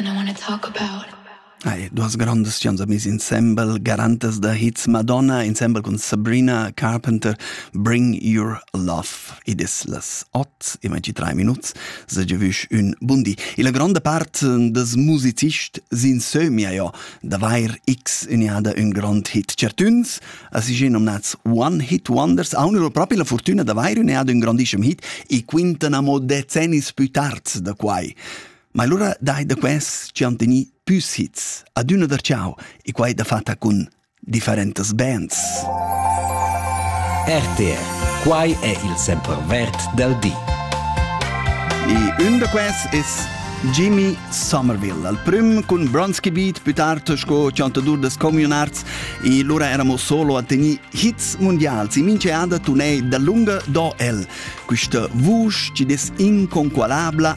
and I want to talk about Hai, duas grandas chans amis insembel, garantas da hits Madonna, insembel con Sabrina Carpenter, Bring Your Love. Id es las ot, imagi tre minuts, se giavüsch ün bundi. E la gronda part des musicists s'insömia jo d'avair x uniada ün grand hit. Certuns, as si nominats One-Hit Wonders, haunno propi la fortuna d'avair uniada ün grandissem hit e quintan amo decennis più tard da quai. Ma lura dai da quels chi han teni püs hits adüna da ciao e quai da fatta cun differentas bands. RTR, quai è il sempervert del di. E un da quels es Jimmy Somerville, al prüm cun Bronski Beat, più tard sco chantadur des Communarts, e lura eramo solo a teni hits mundials. E mince ada tunei da lunga do el, quista vusch ci des inconqualabla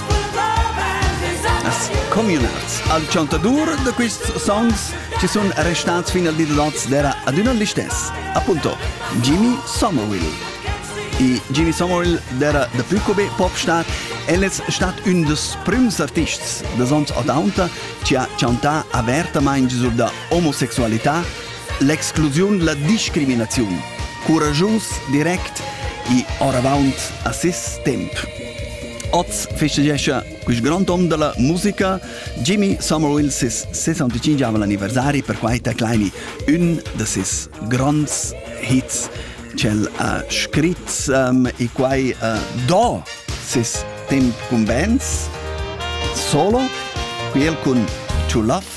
As communals al chantadur da quists songs chi sun restats fin al di da l'oz d'eira adüna l'istess, appunto Jimmy Somerville. I Jimmy Somerville d'eira dapü co be popstar, el es stat ün dels prüms artists da zons ottanta chi ha chantà avertamaing sur da omosexualità L'exclusiun, la discriminaziun. Curaschus, direct e oravant a ses temp. Oz festeggia il grond hom della musica, Jimmy Somerville, ses 65 anniversari, per quai ta claimi un da ses gronds hits ch'el ha scrit um, e quai uh, do ses temp con bands solo, qui el cun True Love